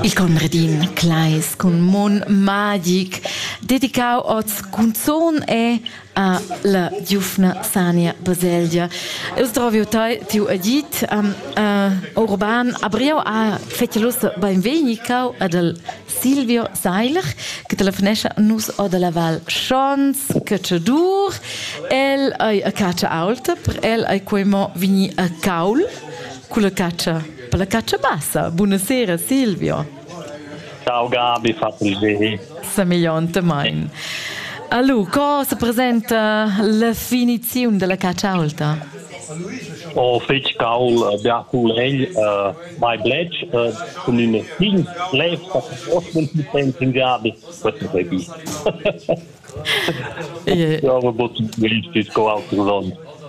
Il Conradin Kleis cun mun magic dedicau oz cunzon e a la giufna Sania Baselgia. Eu stroviu tai tiu agit um, uh, Urban Abriau a fecelussa benvegni cau ad al Silvio Seiler che telefonescha nus o dalla Val Schons Cacciadur el ei a caccia aulta per el ei quei mo vini a caul culla caccia Per la caccia bassa, buonasera Silvio. Ciao Gabi, fateli bene. Semegliontemein. Allora, cosa presenta la finizione della caccia alta? O fetg caul bia culegl, uh, mai bletsch, uh, cun in fin lev, dat ospens in Gabi, questo sei bi.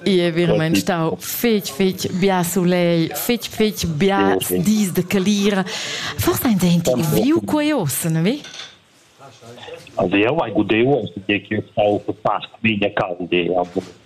Ie veramein stau fetg fetg bia sulei, fetg fetg bia dis de calira. Forse ein denti viu quei ossen, vi? Also eu hai gudeu, also che eu stau per part mia calde, aber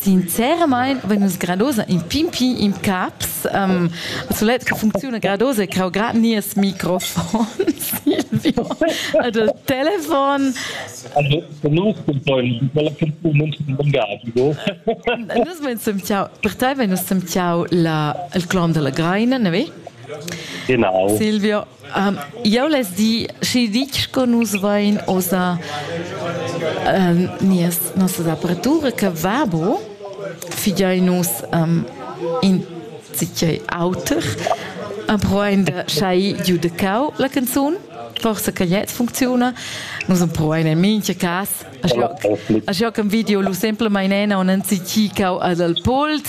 Sinceramain vegn nus gradosa in pimpi in caps. Um, sulet che funcziuna gradosa è crau grad nies microfon, Silvio. Also il telefon. Also, nus cuntegn quella persuna non lungagico. Nus vein semtiau, per te vein nus semtiau la, il clon della Greina, ne ve? Genau. Silvio. Um, jau les di, schi ditg co nus vain ossa um, nias, nossas aparatura che vabo, figiai nus um, in zicei auter, provain de schai giu de cau la canzun, forse che jetzt funziona, nus provain in mincha cas, a jo, a jo che video lu semplemain ena und an zicei cau ad al polt,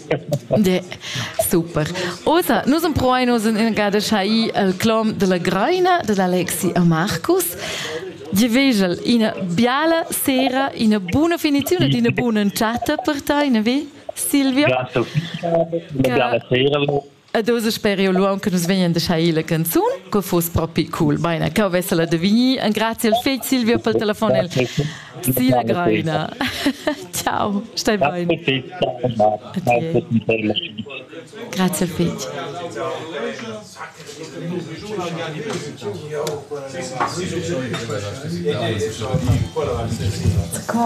De, super. Osa, nus empruain oz in gada schai el clom della Greina, dell'Alexi a Marcus. Gli vegel ina biala sera, ina buona finizione ed una buona chatta per te, ne vi? Silvia? Grazie. Una biala sera. Ed oz sper io lu aunc nus vegnan de schai la canzun, co fos propi cool. Beina, cau vesela de vegnir en grazie al fegl Silvio pel telefon el. Sila Greina. Ciao, stai bene. Grazie al fegl. Co?